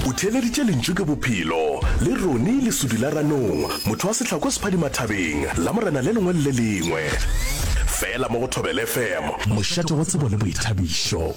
O theeleditše lentšu ke bophelo, le Ronnie lesudi la ranong, motho wa sehlako sephadimathabeng, lamorena le lengwe le le lengwe. Fela mo go Thobela FM. Mošate wa tsebo le boithabišo.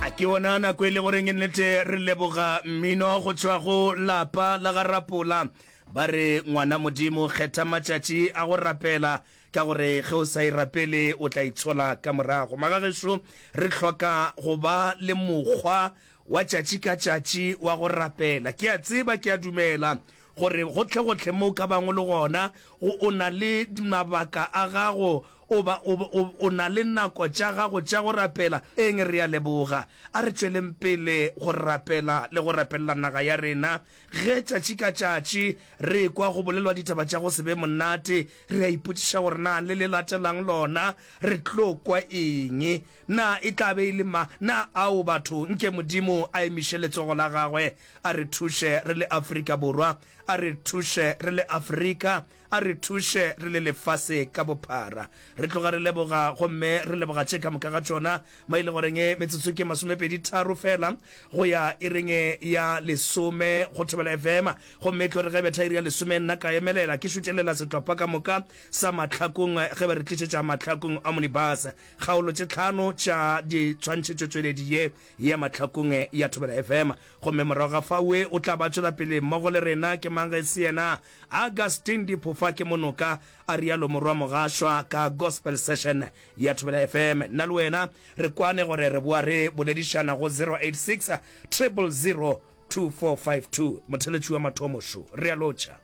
A ke yona nako e le goreng e nnete re leboga mmino go tšwa go lapa la ga Rapola ba re ngwana Modimo kgetha matšatši a go rapela Ka gore ge o sa e rapele, o tla e tshola ka morago. Magagešo, re hloka go ba le mokgwa wa tšatši ka tšatši wa go rapela. Ke a tseba, ke a dumela gore gohle-gohle mo o ka bago le gona, o, o na le mabaka a gago, o ba, o, o, o na le nako tša gago tša go rapela. Eng, re a leboga. A re tšweleng pele go rapela le go rapelela naga ya rena. Ge tšatši ka tšatši re ekwa go bolelwa ditaba tša go se be monate, re a ipotšiša gore na le le latelang lona re tlo kwa eng? Na e tla be e le ma? Na ao batho? Nke Modimo a emiše letsogo la gagwe a re thuše re le Afrika Borwa, a re thuše re le Afrika. A re thuše re le lefase ka bophara. Re tloga re leboga gomme re leboga tše ka moka ga tšona, mo e le goreng metsotso ke masomepedi tharo feela go ya ireng ya lesome go thobela efema. Gomme e tlo re ge e betha iri ya lesome nna ka emelela ke šutšelela setlhopha ka moka sa mahlakong ge ba re tlišetša mahlakong a Monibus kgaolo tše tlhano tša ditshwantšhetšotšweledi ye ya mahlakong ya thobela efema. Gomme morago ga fao o tla ba tšwela pele mmogo le rena. Ke mang ge e se yena? Augustine Diphofa ke monoka, a realo Morwa Mogašwa ka Gospel Session ya Thobela FM. Nna le wena re kwane gore re boa re boledišana go 0860002452. Motheletši wa mathomo šo re a lotšha.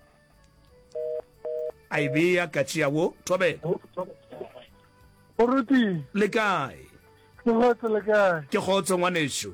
A e bea ka tšea wo Thobela. Moruti. Le kae? Ke gotse le kae? Ke gotse ngwanešu.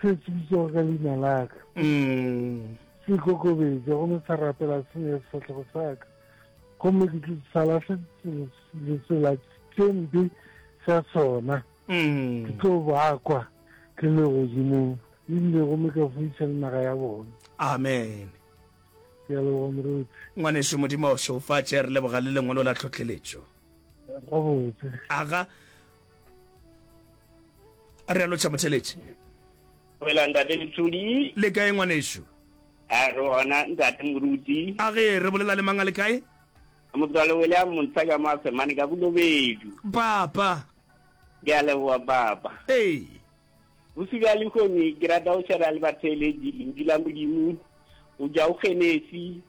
se se bitšego ka leina la ka se ikokobetša gomme sa rapela senya sefatlhego sa ka gomme ke tlo sa lahle letsela tše mpe tša sona ke tlo bakwa ke le godimong ebile gomme ka fuiša le naga ya bona amen ke a leboga moruti ngwaneso modimo o šeofatše re leboga le lengwalo la tlhotlheletšo gabotse aga re a lotšha motheletši wela ntate letsodi le kae ngwanešu a re gona ntate moruti a ge re bolela le mang a le kae motswale wele a montsha ka mo a semane ka bolobedu papa ke a leboa papa ee bosi bja lehomi ke rata go šera le batheeletši lentšu la modimo o ja o genesi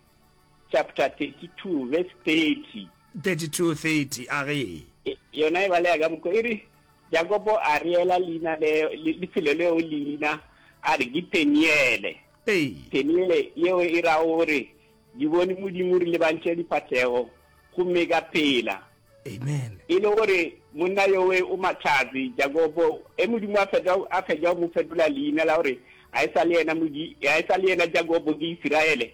chapter 32 verse 30 32:30 a re. Yona e balega ka mokgo e re, Jakopo a reela leina leo le lefelo leo leina a re ke Peniele. Ee. Peniele yeo e ra gore di bone Modimo re lebantše difahlego gomme ka phela. Amen. E le gore monna yowe o matlhatsi Jakopo e Modimo a fetwa a fetwa go mo fetola leina la gore a e sa le yena modi a e sa le yena Jakopo ke Isiraele.